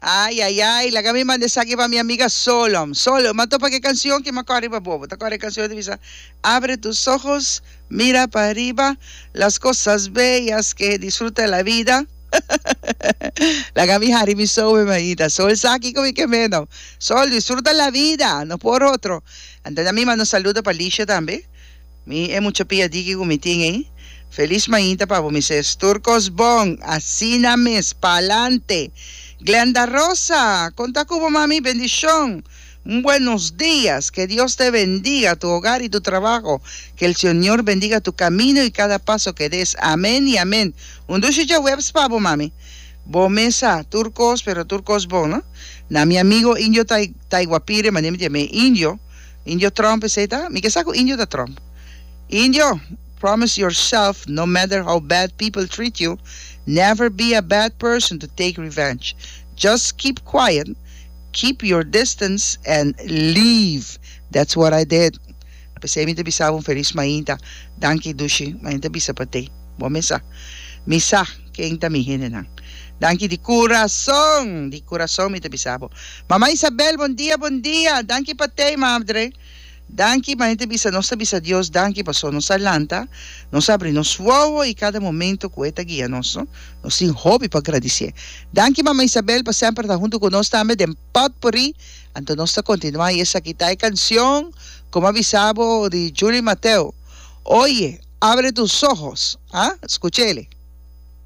Ay ay ay laga mi manda esaki pa mi amiga Solom Solom m'a topa ku e kansion ki m'a kòrè riba bobo ta kòrè e kansion ta bisa Abre tus ojos mira pa riba las kosas beyas ke he disfruta e la vida laga mi hari mi soe mi ainda so esaki ku mi ke meno Sol disfruta la vida no por otro anto na mi manda un saludo pa Licia tambe. Mi e mucha pia diki ku mi tin ei. Feliz mainta pa bo mi ses. Tur kos bon. Asina mes. Pa'lante. Glenda Rosa, kon ta ku bo mami? Bendishon. Un buenos dias. Ke Dios te bendiga tu hogar i tu trabaho. Ke el Señor bendiga tu kamino i kada paso ke des. Amen i amen. Un dushi djaweps pa bo mami. Bo mes sa tur kos, pero tur kos bon no. Na mi amigo indio Tai Taiguapire, manera mi te llam'é indio. Indio Trump esey ta? Mi ke sa ku Indio ta Trump. Indio, promise yourself no matter how bad people treat you, never be a bad person to take revenge. Just keep quiet, keep your distance and leave. That's what I did. Pesey mi ta bisa bo un felis mainta. Danki Dushi, ma enta bisa pa te. Bo mes sa. Mi sa ken ta mi hendenan. Danki di kurason, di kurason mi ta bisa bo. Mama Isabel bon dia bon dia danki pa tei mabdre danki ma hende bisa nos ta bisa Dios danki paso nos a lanta nos abri nos wowo y cada momento cu he ta guia nos no nos tin hopi pa gradicié danki mama Isabel pa semper ta hunto cu nos tambe den potpourri anto nos ta continua y esaki ta e cancion como a bisa bo di Julie Mateo oye abre tus ojos ah scuchele.